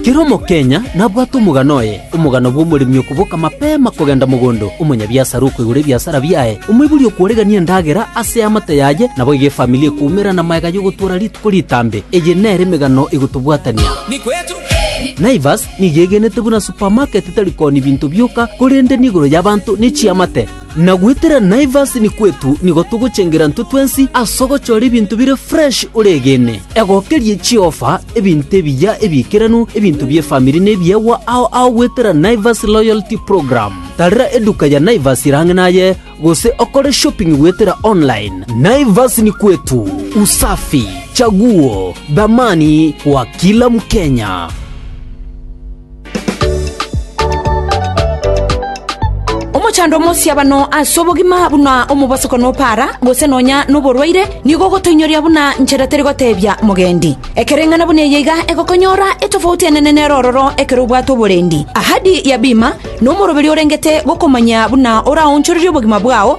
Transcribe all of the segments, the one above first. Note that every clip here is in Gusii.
Kera omokenya nabwate omogano oye, omogano bw'omoremi okoboka mapema kogenda mogondo, omonyabiasara okoigora ebiasara biaye, omoibori okworegania endagera ase eamate yaye, naboigo efamili ekoumera namaega y'ogotoora rituko ritambe. Eye nere emegano egotobwatania. Naivas nigo egenete buna supamaketi tari kooni binto bioka, korende nigoro y'abanto ne chiamate. Na goetera Naivas ni kwetu nigo togochengera intwe twensi ase ogochora ebinto bire fresh oregene. Egokerie chiofa, ebinto ebiya ebiikeranu, ebinto bi'efamiri na ebiegwa ao ao goetera Naivas Loyalty Program. Tarera eduka ya Naivas ere ang'e naye gose okore shopping goetera online. Naivas ni kwetu, usafi, chaguo, dhamani kwa kila Mkenya. Omochando omosiabano ase obogima buna omobosoko nopara, gose nonya noborwaire, nigo ogotoinyoria buna nchera teri gotebia mogendi. Ekereng'ana buna eye iga egokonyora etofauti enene nere ororo ekero obwate oborendi. Ahadi ya bima nomoroberio orengete gokomanya buna oraonchorerie obogima bwao,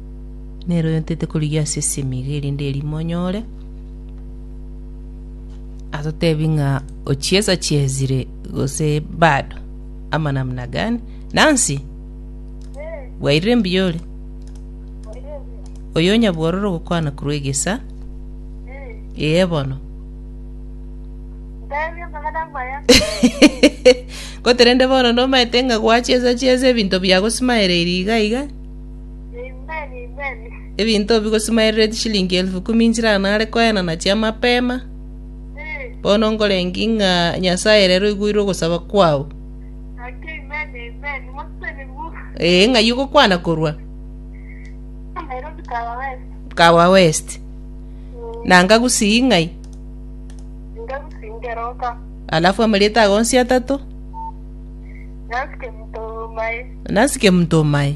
Nero yotete korigia ase esemi iga erinde erimo onyore. Atotebi ng'a ochiesa chiesire gose bado ama namna gani? Nancy, bwairire mbuya ore? Oyo onyabwororo gokwana korwa egesa? Ee bono. Goterende bono nomaete ng'a gwachiesa chiesa ebinto biago simaereiri iga iga. Ebinto bigosimaerera etishilingi elfu ikomi nchire nare koenana chi'amapema. Bono nkorengie ng'a Nyasae rero oigwere ogosaba kwao. Ee, ng'ai ogokwana korwa? Kawa West. Na ngagusii ng'ai? Alafu amarieta ago onsi atato? Nasike mtu omae.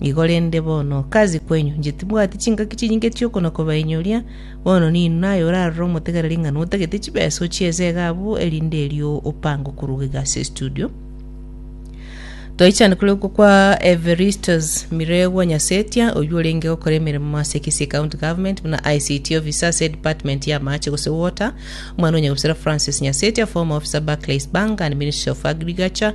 Igo rende bono, kazi kwenyu, inche tibwati chingaki chinyinge chi'okona kobainyoria, bono ninwe naye orarore omotegereri ng'a notagete chibesa ochie esege abwo, erinde erio opange okoruga iga ase estudio. Twaichana korokwa kwa Evaristus Miregwa Nyasetia, oyio orenge gokora emeremo ase Kisii County Government buna ICT officer ase department ya amache gose water, omwana o nyagusera Francis Nyasetia, former officer Barclays Bank and Ministry of Agriculture,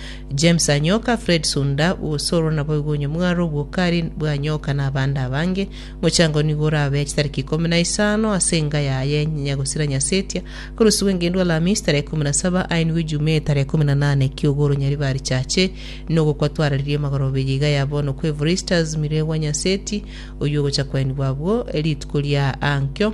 James anyoka Fred Sunda gose oro naboigo onye mware obwokari bwanyoka na abande abange, mochango nigo orabe chitariki ikomi na isano ase enga yaye nyagosira Nyasetia, korusigwe ngendu Alhamisi tarehe ikomi na saba ainigwe Ijumaa tarehe ikomi na nane kiogoro nyaribare richache nogokwa twararirie amagorobe ya iga ya bono kwa Evarystus Miregwa Nyaseti oyio ogocha kwainigwa abwo rituko ria ankyo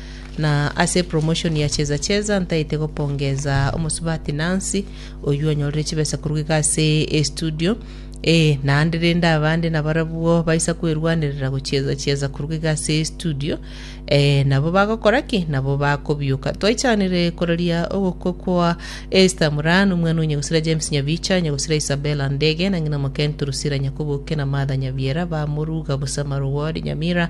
Na ase epromotion ya Cheza Cheza ntaete gopongeza omosubati Nancy oyio onyorire chibesa korwa iga ase estudio ee naende rende abande nabarabwo baisa kwerwanerera gochieza chieza korwa iga ase estudio ee nabo bagokora ki nabo bakobioka twaichanire koraria ogokwa kwa Esther Murano omwana onyegusira James Nyabicha nyegusira Isabella Ndege na ng'ina Mokentu Rusira Nyakoboke na Martha Nyabiera bamoruga busa Marugori Nyamira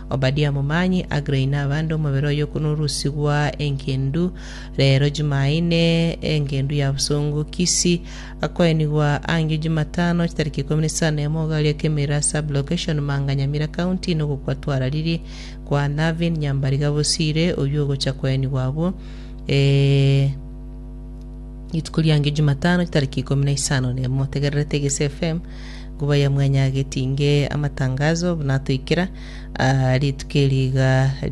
Obadia momanyi, Aggrey na abande omobere oyo okonorusigwa engendu reero Jumaine, engendu ya bosongo, Kisii, akoenigwa angio Jumatano chitariki ikomi na isano na emo Ogaria Kemira sub-location Manga Nyamira County nogokwa twarariri kwa Navin Nyambariga Bosire oyio ogocha koenigwa abwo rituko riangio Jumatano chitariki ikomi na isano na emo. Motegererete Gesi FM. Nkuba ya Mwanya Getinge Amatangazo buna atoikera aa rituko eri iga ria.